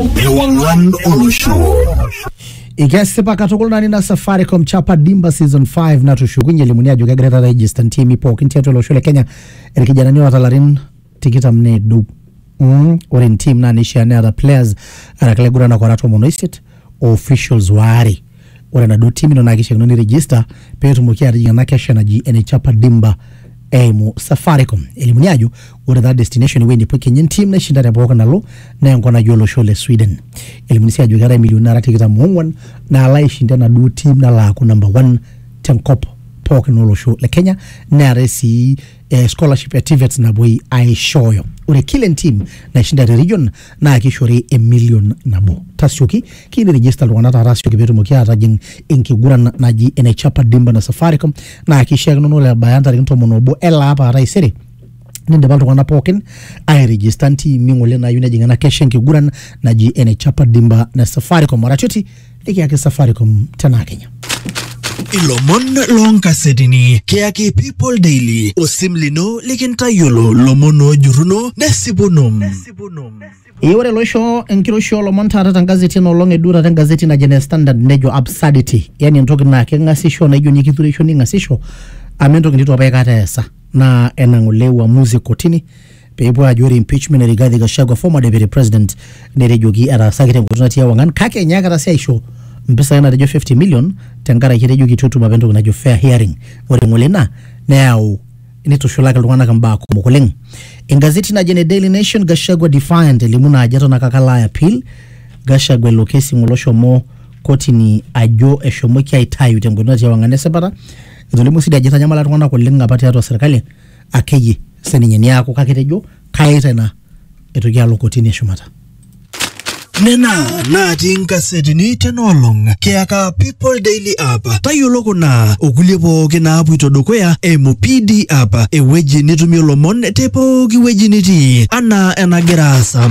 Ewang'an olosho. ikesipa katukul nani na safaricom chapa dimba season 5 natushukunye elimuni ajo kegira taata aigista ntimi pookin tiatua olosho le kenya irkijanani oota larin tikitam needu mm, ore ntim naa neishaa neeta players araki laiguranak ora tomon oisiet o officials waare Ore enaduo tim ino naa keishiakino ni register pee etumoki atijing ena kesha naji ene Chapa Dimba eimu Safaricom. Elimuni ajo ore taa destination ewueji nepuo kenya entim naishinda te pooki nalo naa enkop naji olosho le Sweden. Elimuni sii ajo keetae imilioni nara tikitam oong'wan naalo aishinda enaduo tim nalo aaku number one tenkop pookin olosho le Kenya neetae sii eh, scholarship ya TVETs napuoi aishooyo ore kila entim naishinda te region naa kishori emilion nabo tasioki kiyieu nirejista iltung'anak taata asioki peetumoki aatajing enkiguran naji ene chapa dimba na safaricom naa kishiakino naa ore ebaya ntarikini tomon obo ele apa aa taisere nindipa iltung'anak pookin airejista ntimi ng'ole naayieu nejing ena kesha enkiguran naji ene chapa dimba na safaricom aratioti Nikiaki Safaricom tenaa Kenya. Ilomon loonkasetini kiyaki People Daily osim lino likintayiolo lomon oojurruno nesipuno. Ee ore loisho enkiroshi oolomon taata tengazeti enoolong eduo taata engazeti naji ene Standard nejo absurdity yani entoki naa keng'asisho naijo ninye kitureisho ning'asisho amu entoki nitu apa aikata eesa naa ena ng'ole uamuzi e kotini peepuo aajo ore impeachment e Rigathi Gachagua former deputy president netejoki etaasaki tenkoitoi natii ewang'an kake enyaakita sii aisho mpisai natejo 50 million tenkaraki etejoki itu etum apa entoki najo fair hearing ore ng'ole ina neyau nitushulaki iltung'anak imbaa kumok oleng engazeti naji ene Daily Nation Gachagua defiant elimu naa ajo eton ake ake alo ai appeal Gachagua ilo kesi ng'ole oshomo kotini ajo eshomoki aitayu tenkoitoi natii ewang'an esipata etolimuo sii dii ajo itanyamala iltung'anak oleng apa tiatua serkali akeyie sininye niaku kake tejo kaye tena etoki alo kotini eshumata nena natii nkasetini tena olong kiyaka people daily app tayiolo kuna okulie pooki naapuito dukuya eimu pd app ewueji nitumie lomon te pooki wueji nitii anaa enagira aasa